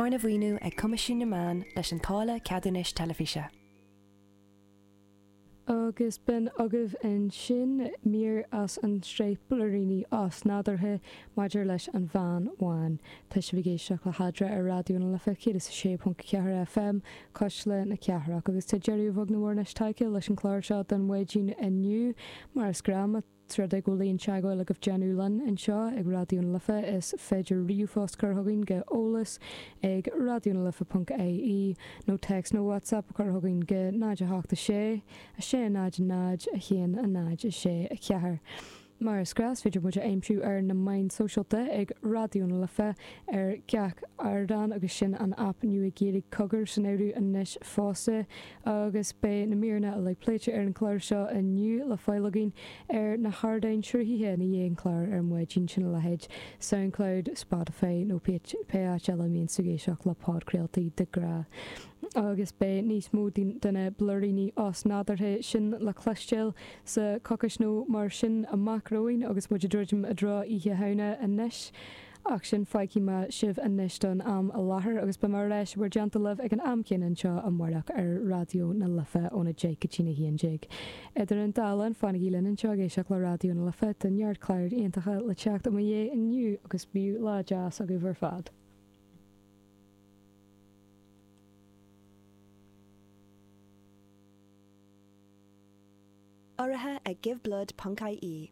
Arna mhaoiniú ag Coimisiún na Meán leis an táille ceadúnais teilifíse. Agus b'in agaibh ansin mír as an tsraith Blúiríní Osnádúrtha maidir leis an Bhean Bhán. Tá sibh ag éisteacht le hAdhmhaidin ar Raidió na Life 106.4 FM, Cuisle na Cathrach, agus tá deireadh beag nó mór anois tagtha leis an chlár seo den Adhmhaidin inniu, mar is gnách. Más mian libh teagmháil a dhéanamh linn anseo ag Raidió na Life is féidir ríomhphost a chur chugainn go eolas ag raidiónalife ponc IE nó téacs nó WhatsApp a chur chugainn go 0 8 6 6 0 0 1 0 6 4 Mar is gnách is féidir muid a aimsiú ar na meáin shóisialta ag Raidió na Life ar gach ardán agus sin an aip nua Gaeilge Cogar san áireamh anois fosta agus beidh na míreanna uilig pléite ar an gclár seo inniu le fáil agaibh ar na hardáin sruthaithe i ndiaidh an chláir ar maidin, sin a leithéid Soundcloud, Spotify nó pé áit eile a mbíonn tú ag éisteacht le podchraoltaí de ghnáth. Agus beidh níos mó de na blúiríní osnádúrtha sin le cloisteáil sa choicis nó mar sin amach romhainn agus muid ag druidim i dtreo Oíche Shamhna anois. Ach sin fágfaidh mé sibh anois don am i láthair agus beidh mé ar ais i bhur dteannta libh ag an am céanna anseo amáireach ar Raidió na Life óna deich go dtí a haon déag. Idir an dá linn, fanaigí linn anseo ag éisteacht le Raidió na Life do neart cláir iontacha le teacht i mo dhiaidh inniu agus bíodh lá deas agaibh ar fad. Urraithe ag Give Blood ponc-IE.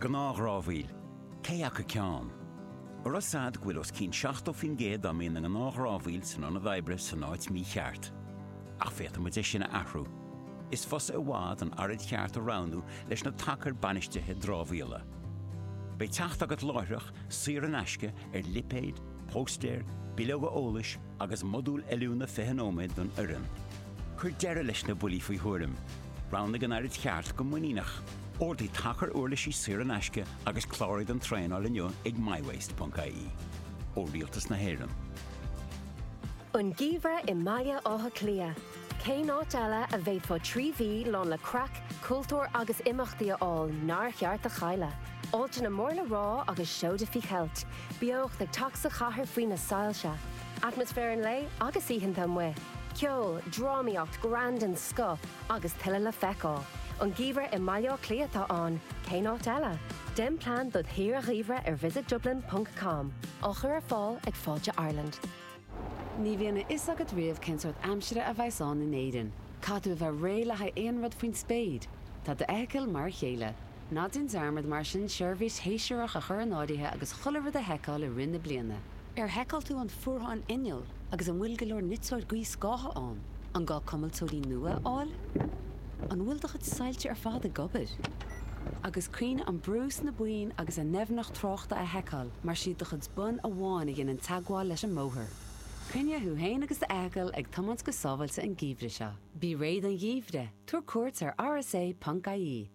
Gnáthdhramhaíl, cé acu ceann? Más ea go bhfuil os cionn 70% dá mbíonn i ngnáthdhramhaíl san ionad oibre san áit mícheart. Ach féadfaidh muid é sin a athrú. Is fusa i bhfad an araid cheart a roghnú leis na tacair bainistithe dramhaíola. Beidh teacht agat láithreach, saor in aisce, ar lipéid, póstaeir, bileoga eolais agus modúl oiliúna 20 nóiméad don fhoireann. Cuir deireadh leis na buillí faoi thuairim. Roghnaigh an araid cheart go muiníneach. Ordaigh tacar uirlisí saor in aisce agus cláraigh don traenáil inniu ag mywaste.ie. Ó Rialtas na hÉireann. An geimhreadh i mBaile Átha Cliath, cén áit eile a bhféadfá trí mhí lán le craic, cultúr agus imeachtaí a fháil nár cheart a chailleadh? Áiteanna mór le rá agus seoda faoi cheilt, beocht ag teacht sa chathair faoi na soilse, Atmaisféar an lae agus oícheanta amuigh. Ceol, drámaíocht, greann den scoth agus tuilleadh le feiceáil. An geimhreadh i mBaile Átha Cliath atá ann, cén áit eile? Déan plean dod' shaoire gheimhridh ar visitdublin ponc com. Á chur ar fáil ag Fáilte Ireland. Ní bhíonn a fhios agat riamh cén sórt aimsire a bheas ann in Éirinn. Caithfidh tú a bheith réidh le haghaidh aon rud faoin spéir. Tá d'fheithicil mar a chéile. Ná déan dearmad mar sin seirbhís shéasúrach a chur in áirithe agus chuile rud a sheiceáil i rith na bliana. Ar sheiceáil tú an fuarthán inneall agus an bhfuil go leor niteoir gaothscátha ann? An gá cuimilteoirí nua a fháil? An bhfuil do chuid soilse ar fad ag obair? Agus cuimhnigh an brú sna boinn agus a ndoimhneacht tráchta a sheiceáil mar is iad do chuid bonn amháin a dhéanann teagmháil leis an mbóthar. Coinnigh thú féin agus do fheithicil ag tiomáint go sábháilte an geimhreadh seo. Bí réidh don gheimhreadh, tabhair cuairt ar rsa.ie.